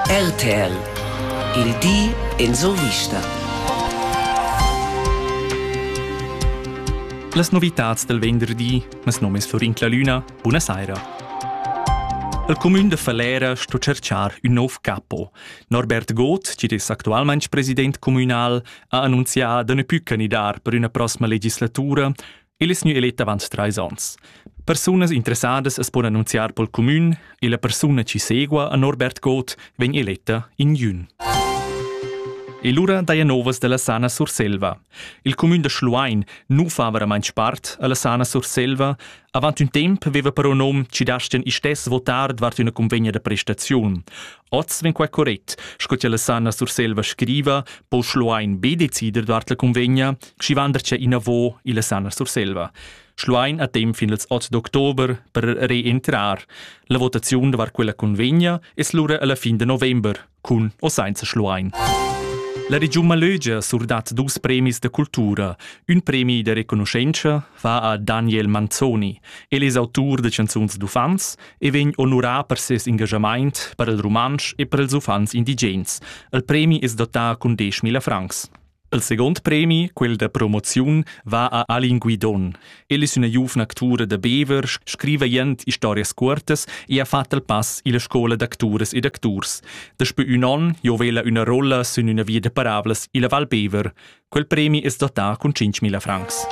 RTL il di en survista. Las novitads del venderdi, mes nom es Florin Clalüna, buna saira. El comün de Falera sto cerchar ün nov capo. Norbert Goth, chi es actualmaing president communal, ha annunzià da ne pü candidar per üna prossima legislatura El es gnü elet avant trais ons. Persunas interessadas as pon annunziar pel cumün e la persuna chi segua a Norbert Goth vegn eletta in jün. E lura daja novas da la Sana Surselva. Il cumün da Schluein nu fa veramaint spart a la Sana Surselva. Avant ün temp veva però nom chi dastian istess votar davart üna convegna da prestaziun. Oz vegn quai correct, sco che la Sanna Surselva scriva, po Schluein be decider davart la cunvegna, schi vandercia inavo illa Sanna Surselva. Schluein ha temp fin ils 8 d'october per reentrar. La votaziun davart quella cunvegna es lura alla fin de november, cun o sainza Schluein. La regiun Malögia surdat dus premis da cultura, ün premi da reconuschentscha, va a Daniel Manzoni. El es autur de canzuns d'uffants e vegn onurà per ses engagamaint per il rumantsch e per ils uffants indigens. Il premi es dotà cun 10.000 francs. Il second premi, quel da promoziun, va a Alin Guidon. El es üna giuvna actura da Bever, scriva jent historias cuortas e ha fat il pass illa scoula d'acturas ed acturs. Daspö ün on giovela üna rolla sün üna via da parablas illa Val Bever. Quel premi es dotà cun 5.000 francs.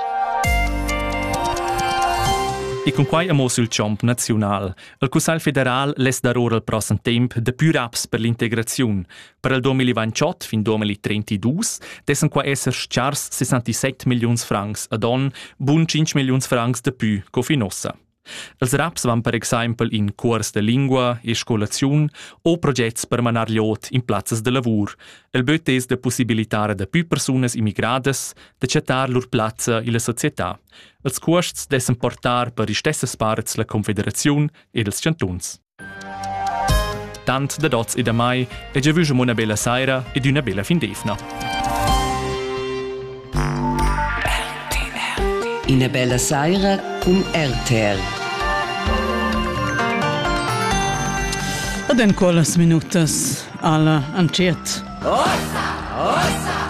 E cun quai amo sül chomp naziunal. Il Cussagl federal less dar ora il prossem temp de pür aps per l'integraziun. Per il 2028 fin 2032 dessen qua esser schars 67 milliuns francs ad on, bun 5 milliuns francs de pü co fin ossa. Els raps van per exempel in cuors de lingua e scolaziun o progets per manar liot in plazzas de lavur. El böt es da possibilitar da più persunas immigradas da chattar lur plazza illa società. Els cuosts dessen portar per istessas parts la Confederaziun ed els chantuns. Tant dad oz e da mai e giavüsch amò üna bella saira ed üna bella fin d'eivna. Ina bella saira cun RTR. Ed en quellas minutas alla anciet. Ossa! Ossa!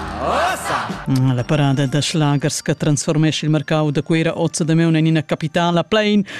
Mm, la parada da schlagers che trasformesce il mercau da Cuira ozza da Meun in ina capitala plein